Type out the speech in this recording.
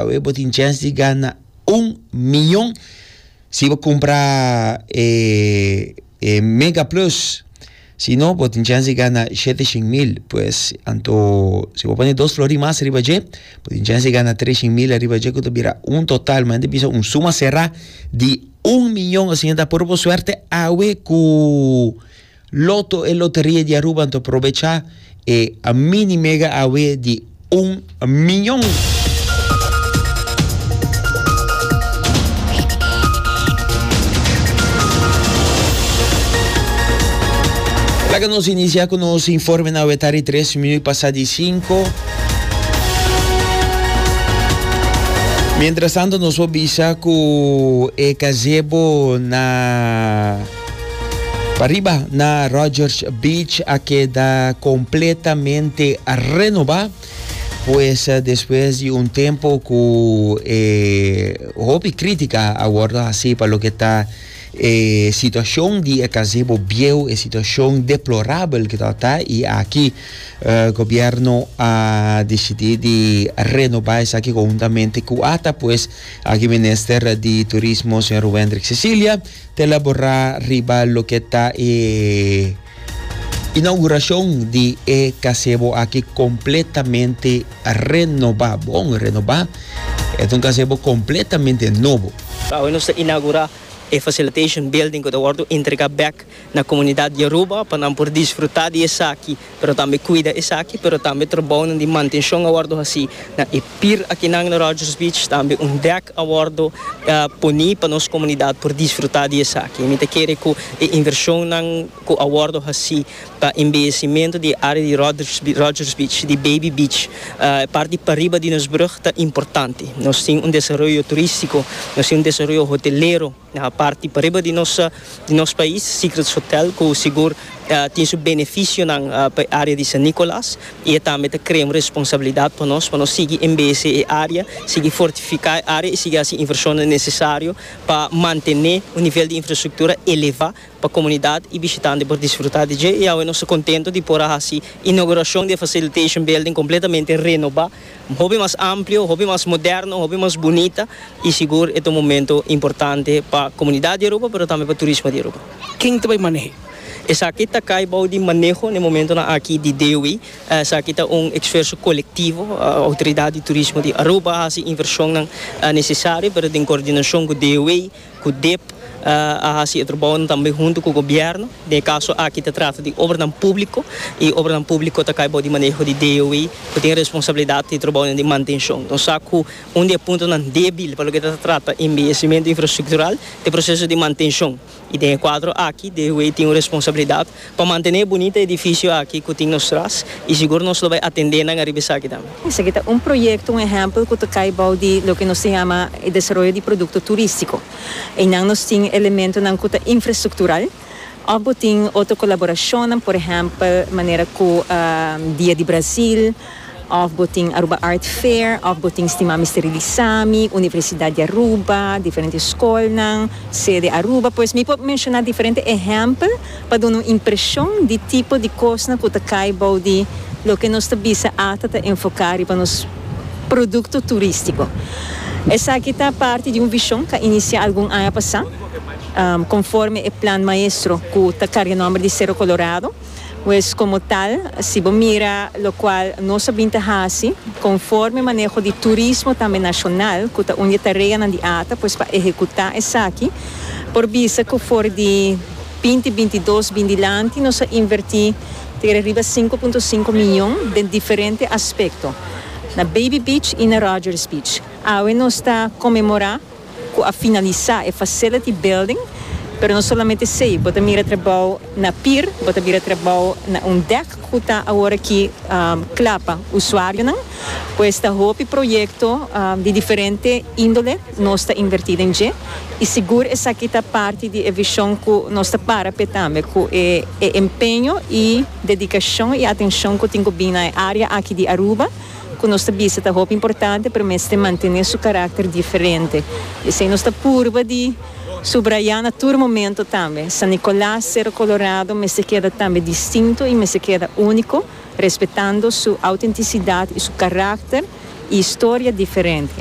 Awe bo tin chance di gana un miyon si bo kumpra e, e Mega Plus. Si no, bo tin chance di gana shete shin mil. Pues, anto, si bo pone dos flori mas riba dje, bo tin chance di gana tres shin mil riba dje, ku ta bira un total, man ta bisa un suma será di un miyon. Asina ta, por bo suerte awe ku. Lotto e loteria di Aruba ta probecha e mini mega awe di un miñon. Laga nos inicia cu nos informe na awe tari tres minuut pasa di cinco. Mientras tanto nos por bisa cu e gazebo na Pariba na Rogers Beach a keda completamente renoba pues despues di un tempo cu eh, hopi crítica a wordo haci pa lo que ta eh, situacion di e gazebo bieu, e situacion deplorabel que ta ta y aki eh, gobierno a decidi di renoba esaki conjuntamente cu ata pues aki minister di turismo señor Wendrick Cecilia Ta elaborá riba loke ta e inaugurashon di e kasebo aki kompletamente renobá, bon renobá. E ta un kasebo kompletamente nobo. Awe nos ta inaugurá e facilitation building ku ta wòrdu entregá bèk na komunidat Yoruba pa nan por disfrutá di esaki. pero tambe cuida esaki, pero tambe trabounan di mantencion a wordo haci na e pir akinan na Rogers Beach, tambe un dek a wordo poni pa nos comunidad por disfruta di esaki. Mi ta kere cu e inversionnan cu a wordo haci pa embellecimento di e area di Rogers Beach, di Baby Beach, e parti pariba di nos brug ta importante. Nos tin un desaroyo turistico, nos tin un desaroyo hotelero. Na parti pariba di nos di nos pais Secrets Hotel cu sigur tin su beneficionan pa e area di San Nicolas y e tambe ta crea un responsabilidad pa nos pa nos sigui embese e area, sigui fortifica e area y sigui haci inversionnan necesario pa mantene un nivel di infrastructura eleva pa comunidad y bishitante por disfruta di dje y awe nos ta contento di por a haci inauguracion di e facilitation building completamente renoba. hopi mas amplio, hopi mas moderno, hopi mas bunita y sigur e ta un momento importante pa comunidad di Aruba pero tambe pa turismo di Aruba. Ken ta bay manehe? Esaki ta cay bou di maneho na e momentonan aki di DOW. Esaki ta un exferso colectivo. Autoridad di Turismo di Aruba hasi inversionnan necesario pero den coordinacion cu DOW. Cu dep a haci e trabounan tambe hunto cu gobierno. Den e caso aki ta trata di obranan publico y obranan publico ta cay bao di maneho di DOE cu tin responsabilidad di e trabounan di mantencion. Nos sa cu un di e puntonan debil pa loke ta trata embellecimento infrastructural ta e proceso di mantencion y den e cuadro aki DOE tin un responsabilidad Pa mantené e bunita edifisio aki ku tin nos tras i sigur nos lo bai atendé nan ariba esaki tambe. Esaki ta un proyekto, un ehèmpel ku ta kai bou di loke nos ta yama e desaroyo di produkto turístiko. Einan nos tin elementonan ku ta infrastruktural òf bo tin otro kolaborashonnan, por ehèmpel manera ku Dia di Brazil, Of bo tin Aruba Art Fair, of bo tin stima mi sterilisa mi, Universidad di Aruba, diferente scolnan, sede Aruba, pues mi por menciona diferente ehempel pa duna un impresion di tipo di cosnan cu ta cay bou di loke nos ta bisa ata ta enfoca riba nos producto turistico. Esaki ta parti di un vision ca inicia algun aña pasa, conforme e plan maestro cu ta carga nomber di Cerro Colorado. Pues como tal, si bo mira locual nos a bin ta haci, conforme maneho di turismo tambe nacional, cu ta un di e tareanan di ata, pues pa ehecuta esaki, por bisa cu for di binti bintidos bin dilanti nos a inverti tere riba sinku punto sinku miyon den diferente aspecto, na Baby Beach y na Rogers Beach. Awe nos ta conmemora. cu a finalisa e facility building, pero no solamente esey, bo ta mira trabao na pier, bo ta mira trabao na un dek cu ta awor aki cla pa usuarionan, pues ta hopi proyecto di diferente indole nos ta inverti den dje y sigur esaki ta parti di e vision cu nos ta para p'e tambe, cu e empeño y dedicacion y atencion cu tin cu bini na e area aki di Aruba. ku nos ta bisa ta hopi importante pero mester mantené su karakter diferente. P'esei nos ta purba di subrayá na tur momento tambe, San Nicolas Cerro Colorado mester keda tambe distinto i mester keda úniko, respetando su outentisidad i su karakter i historia diferente.